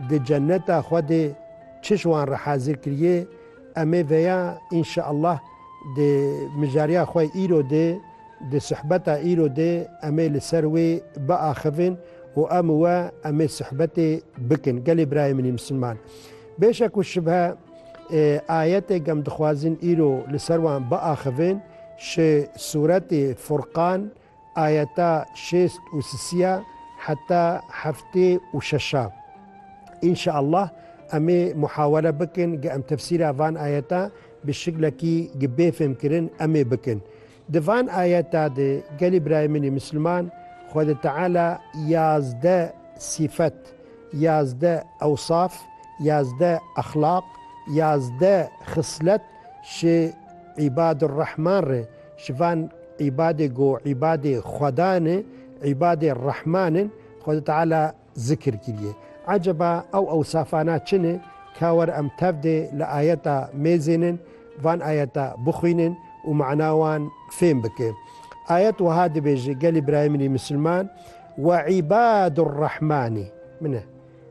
di ceneta Xwedê çi ji wan re hazir kiriyê, em ê veya înşeallah di mijariya xwe îro de, di suhbeta îro de em ê li ser wê biaxivin û em û we em ê suhbetê bikin. Gelê birayê min ê misilman, bêşek û şibhe ayetê gem dixwazin îro li ser wan biaxivin ji sûretê Furqan Ayeta şêst û sisiya heta heftê û şeşa. Înşeallah em ê muhawele bikin ge em tefsîra van ayeta bi şiklekî gi bê fêmkirin em ê bikin. Di van ayeta de gelî birayê min ê misliman Xwedê Teala yazdeh sîfet, yazdeh ewsaf, yazdeh exlaq, yazdeh xislet ji Îbadurrehman re, Ji van îbadê ku îbadê Xwedan e, îbadê Rehman in, Xweda Teala zikir kiriye. Eceba ew ewsafana çi ne? Ka were em tevdê li ayeta mêzênin van ayeta bixwînin û mana wan fêm bike. Ayet wiha dibêje, gelê birayê min ê misilman, Ve îbadûr Rehmanî, min e.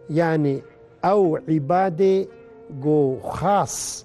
Yanî ew îbadê ku xas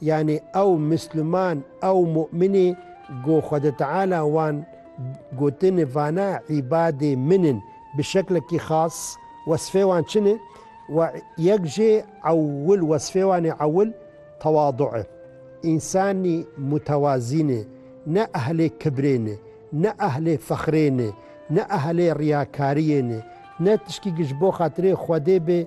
Yanî ew Misliman, ew Mu'minê ku Xwedê Teala wan gotin vana îbadê min in bi şeklekî xas, wesfê wan çi ne? We yek jê ewil wesfê wan ê ewil tewadu e. Însanî mutewazî ne, ne ehlê kibrê ne, ne ehlê fexrê ne, ne ehlê riyakariyê ne, ne tişkî ku ji bo xatirê Xwedê be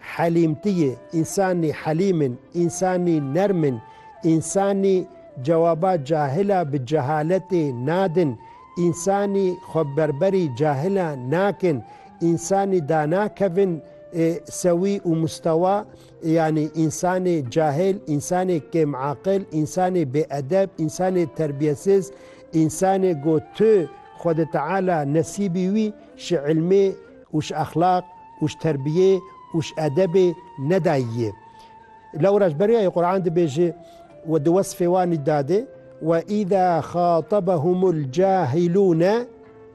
Helîmtiyê, însanî helîm in, însanî nerm in, însanî cewaba cahila bi cehaletê nadin, însanî xweberberî cahilan nakin, însanî danakevin sewî û mustewa, yanî însanê cahil, însanê kêmaqil, însanê bêedeb, însanê terbiyesiz, însanê ku tu Xwedê Teala nesîbî wî ji îlmê, û ji exlaq û ji terbiyê û ji edebê nedayî yê. Lewra ji ber wê Qur'an dibêje û di wesfê wan î dadê, Ve îza xatabehumul cahilûne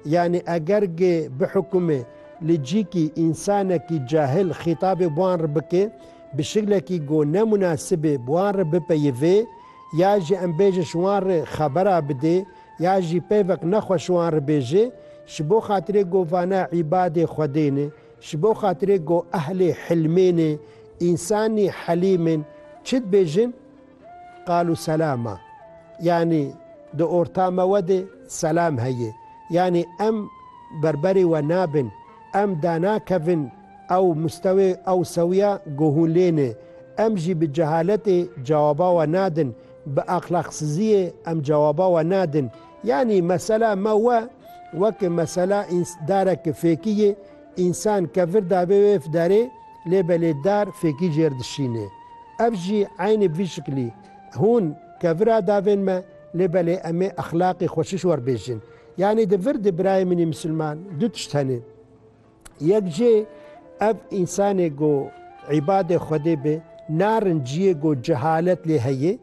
yanî eger gê bihukumê li cîkî însanekî cahil xîtabê bi wan re bike bi şiklekî ku ne munasibê bi wan re bipeyivê ya jî em bêje ji wan re xebera bidê, Ya jî pevek ne xwe şiwan ribêje, Ji bo xatirê ku vane îbadê Xwedê ne, ji bo xatirê ku ehlê hilmê ne, însanî helîm in, çi dibêjin? Qalu selama. Yanî di orta me we de selam heye. Yanî em berberê we nabin, em danakevin ew mustewê, ew sewiya ku hûn lê ne. Em jî bi cehaletê cewaba we nadin. Bi axlaqsiziyê em cewaba we nadin. Yanî mesela me we weke mesela dareke fêkî ye, însan ke vir dabê wê ev darê lê belê dar fêkî jê re dişîne. Ev jî eynî bi vî şiklî hûn ke vir a davên me lê belê em ê exlaqê xweşiş werbêjin. Yanî di vir de birayê min ê misilman du tişt hene. Yek jê ev însanê ku îbadê Xwedê be narin ciyê ku cehalet lê heye,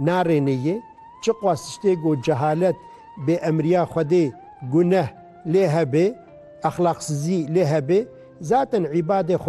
narêne ye. Çiqas tiştê ku cehalet bê emriya Xwedê guneh lê hebe, exlaqsizî lê hebe. Zaten îbadê Xwedê